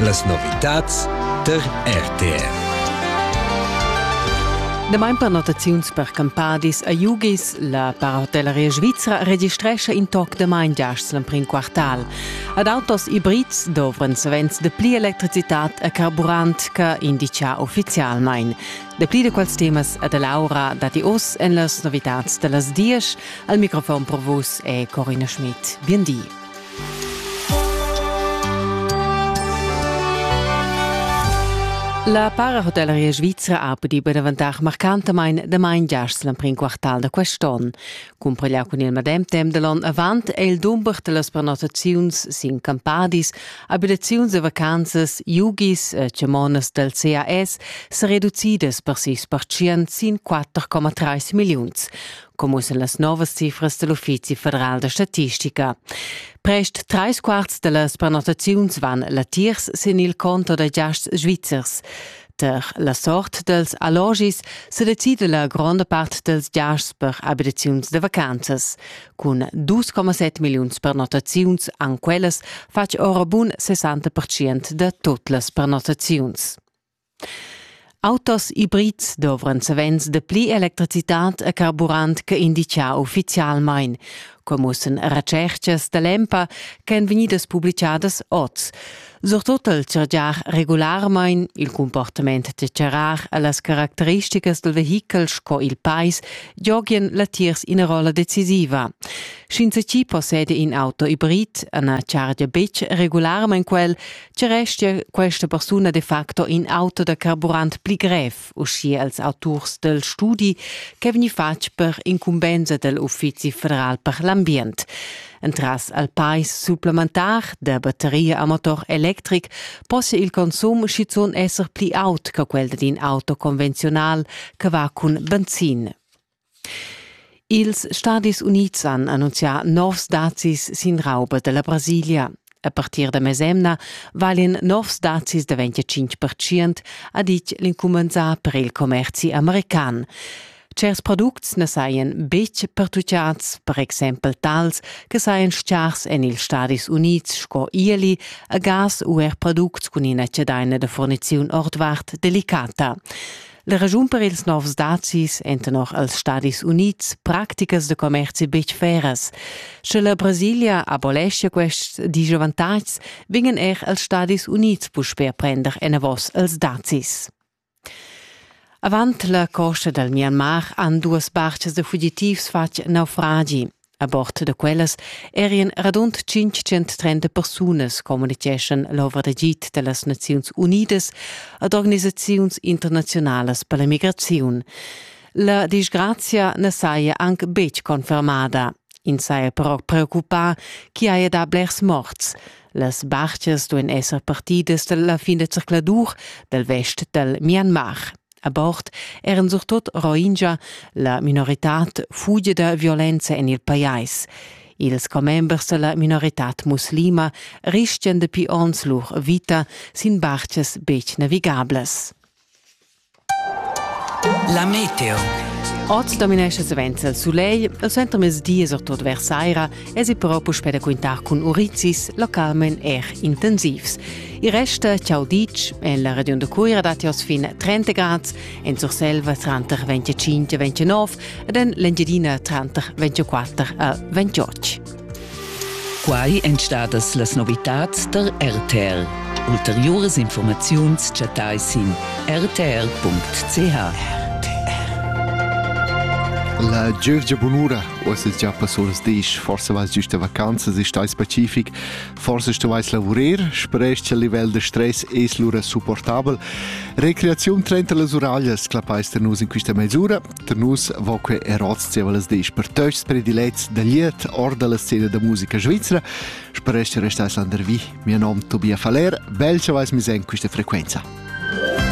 Las novitads tar RTR. Damain per notaziuns per campadis a Jugis, la parahotelleria svizra registrescha in toc damain giasts l'emprim quartal. Ad autos ibrids dovran savens dapli electricitad a carburant che indica uffizialmain. Dapli da quels temas a Laura datti oz en las novitads da las dies. Al microfon per vus è Corina Schmidt. Bien di. La parahotelleria svizra ha pudì be daventar marcantamain damain giast l'emprim quartal da quest onn. Cumpareglià cun il medem temp da l'onn avant è il dumber da las prenotaziuns sin campadis, abitaziuns e vacanzas, yugis e chamonas dal CAS sa reducidas per sis pertschient sin 4,3 milliuns. commussa las novas cifras dell Uffizi federal da statistica. Prest trais quarts dellas prenotaziuns van latiers sin il conto da giasts svizzers. Per la sort dels allogis se decide la gronda part dels giasts per abitaziuns de vacanzas. Cun 2,7 milliuns prenotaziuns an quellas fatg ora bun 60% de tot las prenotaziuns. Autos ibrids dovran savens dapli electricitad a carburant che inditgà uffizialmain. Quai mussan retschertgas da l'EMPA ch'èn vegnidas publitgadas oz. Surtut al chargiar regularmain, il cumportament da charrar e las caracteristicas dal vehichel sco il pais giogian latiers ina rolla decisiva. Sch'insatgi posseda in auto ibrid e na chargia betg regularmain quel, Tge restia questa persuna de facto in auto da carburant pli grev, uschia als auturs del studi, che vegni fatg per incumbensa del Uffizi federal per l'ambient? Entras al pais supplementar der batteria a motor electric posse il consum schizun esser pli aut che quel d'in auto conventional che va cun benzin. Ils Stadis Unids han annunzià novs dazis sin rauba da la Brasilia. A partir da mesemna valian novs dazis daventà 5%, ha ditg l'incumenzà per il commerzi american. Certs products na sajan betg pertutgads, per exempel tals che sajan stgars en ils Stadis Unids sco ieli a gas u er products cun ina chadaina da furniziun ordvart delicata. La ragiun per ils novs dazis èn tenor els Stadis Unids practicas da commerzi betg feras. Sche la Brasilia aboleschia quests disavantatgs, vegnan er els Stadis Unids puspè prender enavos els dazis. Avant la costa dal Myanmar han duas bartgas da fugitivs fatg naufragi. A bord da quellas erien radund 530 persunas communiceschan l'ovra d'agid dellas Naziuns Unidas ad organisaziuns internazionalas per la migraziun. La disgrazia ne saja anc betg confermada. Ins saja però preoccupà chi haja da blers morts. Las barchas duein esser partidas dalla fin da zercladur dal vest dal Myanmar. A bord eran surtot Rohingya, la minoritad fugida violenza en il pajais. Ils commembers della minoritad muslima rischian dapi onns lur vita sin bartgas betg navigablas. La meteo. Oz dominescha savens il sulegl e suentermezdi e surtut vers saira Esi però puspè da quintar cun urizis localment er intensivs. Il resta ciao ditg en la regiun da Cuira dat jos fin 30 grad, en Surselva tranter 25 e 29 ed en l'Engiadina tranter 24 e 28. Quai èn stadas las novitads der RTL. Ulteriuras informaziuns chattai sin rtl.ch. La gievgia bunura Uss es già pass oras disch, forsa vais giüsta vacanzas, ist ais pacific, forsa stovais lavurer, sperest che il livel da stress es lura supportabel. Recreaziun trenta las uraglias, clappais ter nus in quista mezz'ura, ter nus vo que er oz zieva las disch per töchs prediletts da liet or dalla scena da musica svizzera, sperest che restais landervi. Mio nom Tobias Faller, bel che vais mis in quista frequenza.